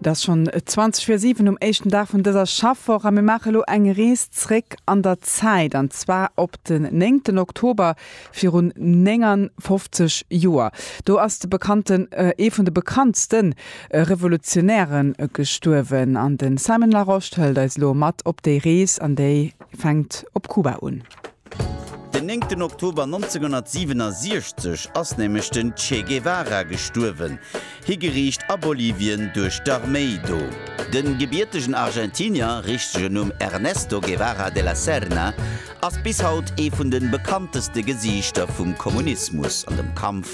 Dass schon 20 vir 7 um éischten Dag vun dëser Schaffwoch a mir maache lo eng Rees zréck an der Zäit, an zwar op den 9 Oktober virun 59 Joer. Do ass de bekannten, ee vun de bekanntste Revolutionäre gestuerwen an de Simon Larosche hëlt eis elo mat op déi Rees an déi fänkt op Kuba un. Den néngten Oktober 1967 ass nämlech den Che Guevara gestuerwen, higeriicht a Bolivien duerch d'Arméi do. De gebiertegen Argentinier, richtegen Numm Ernesto Guevara de la Serna, ass bis haut ee vun de bekannteste Gesiichter vum Kommunismus an dem Kampf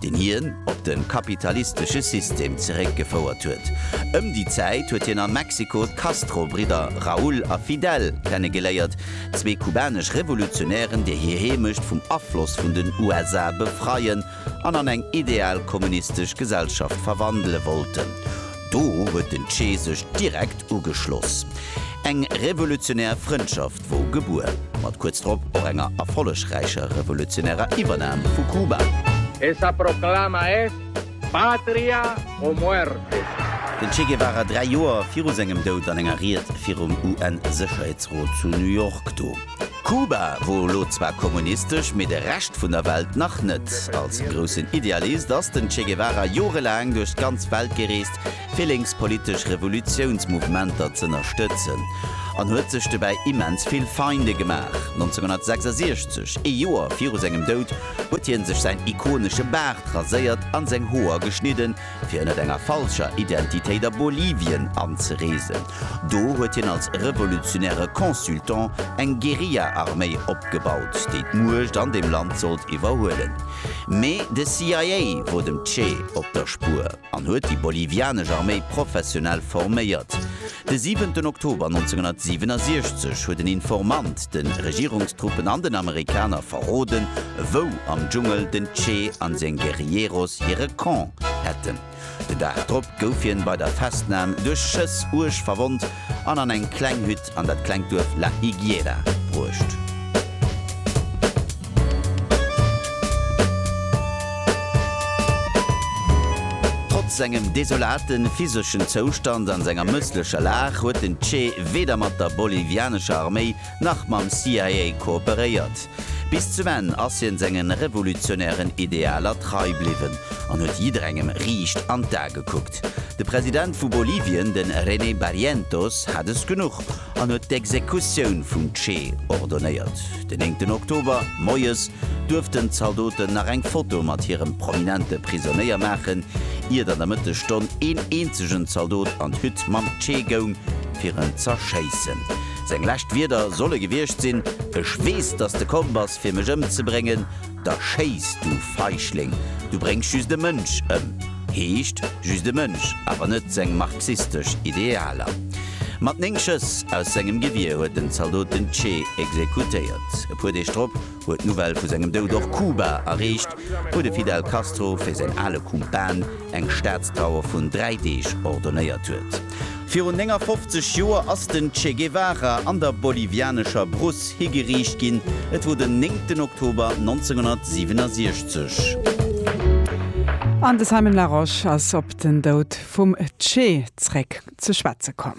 deen hien op de kapitalistesche System zeréckgefouert huet. Ëm déi Zäit huet hien a Mexiko d'Castro-Bridder Raúl a Fidel kennegeléiert, zwee kubanesch Revolutionären, déi hir Heemecht vum Afloss vun den USA befreien an an eng ideal kommunistesch Gesellschaft verwandele wollten. Do huet den Che sech direkt ugeschloss. Eng revolutionär Frëndschaft. Wou gebuer, mat kuerz drop och enger erfollegräicher revolutionärer Iwwernahm vu Kuba. Esa proclama es Patria o muerte! Den Che Guevara dräi Joer viru sengem Doud an enger Ried virum UN-Sécherheetsrot zu New York do. Kuba wor elo zwar kommunistesch, mee de Rescht vun der Welt nach net. Als groussen Idealist ass den Che Guevara jorelaang duerch d'ganz Welt gereest, flénktspolitesch Revolutiounsmouvementer z'ënnerstëtzen an huet sech dobäi immens vill Feinde gemaach. 1966, ee Joer viru sengem Doud, huet hien sech säin ikonesche Baart raséiert an seng Hoer geschnidden, fir ënnert enger falscher Identitéit a Bolivien anzereesen. Do huet hien als revolutionäre Consultant eng Guerilla-Arméi opgebaut, déi d'Muecht an deem Land sollt iwwerhuelen. Mee de CIA wor dem Che op der Spuer. an huet déi bolivianesch Arméi professionell forméiert. De 7 Oktober 1967 huet en Informant de Regierungstruppen an den Amerikaner verroden, wou am Dschungel den Che an seng Guerilleros hire Camp hätten. Den Dag drop gouf hien bei der Festnam duerch Schëss uerg verwonnt an an eng kleng Hütt an dat klengt Duerf La Higuera bruecht. Trotz sengem desolate physeschen Zoustand an senger mësslecher Lag huet den Che weder mat der bolivianescher Arméi nach mam CIA kooperéiert. Bis zum Enn ass hien sengen revolutionären Idealer trei bliwwen an huet jidderengem riicht an d'A gekuckt. De President vu Bolivien, den René Barrientos, hat es genuch an huet d'Exekutioun vum Che ordonéiert. Den néngten Oktober moies duerften Zaldoten nach eng Foto mat hirem prominente Prisonéier maachen, iert an der Mëttesstonn een eenzegen Zaldot an d'Hütt mam Che goung fir en z'erschéissen. Seng lescht Wierder solle gewiescht sinn, Ech weess, dass de komm bass, fir mech ëmzebréngen. Da schéiss, du Feigling! Du bréngs just e Mënsch ëm. Heescht, just e Mënsch, awer net seng marxistesch Idealer. Mat néng Schëss aus sengem Gewier huet den Zaldot den Che exekutéiert. E puer Deeg drop huet d'Nouvelle vu sengem Doud och Kuba erreecht, wou de Fidel Castro fir säin ale Kumpan eng Staatstrauer vun dräi Deeg ordonnéiert huet. Virun 59 Joer ass den Che Guevara an der bolivianescher Brousse higeriicht ginn. Et wor den 9 Oktober 1967. An de Simon Larosche ass op den Doud vum Che zréck ze schwätze komm.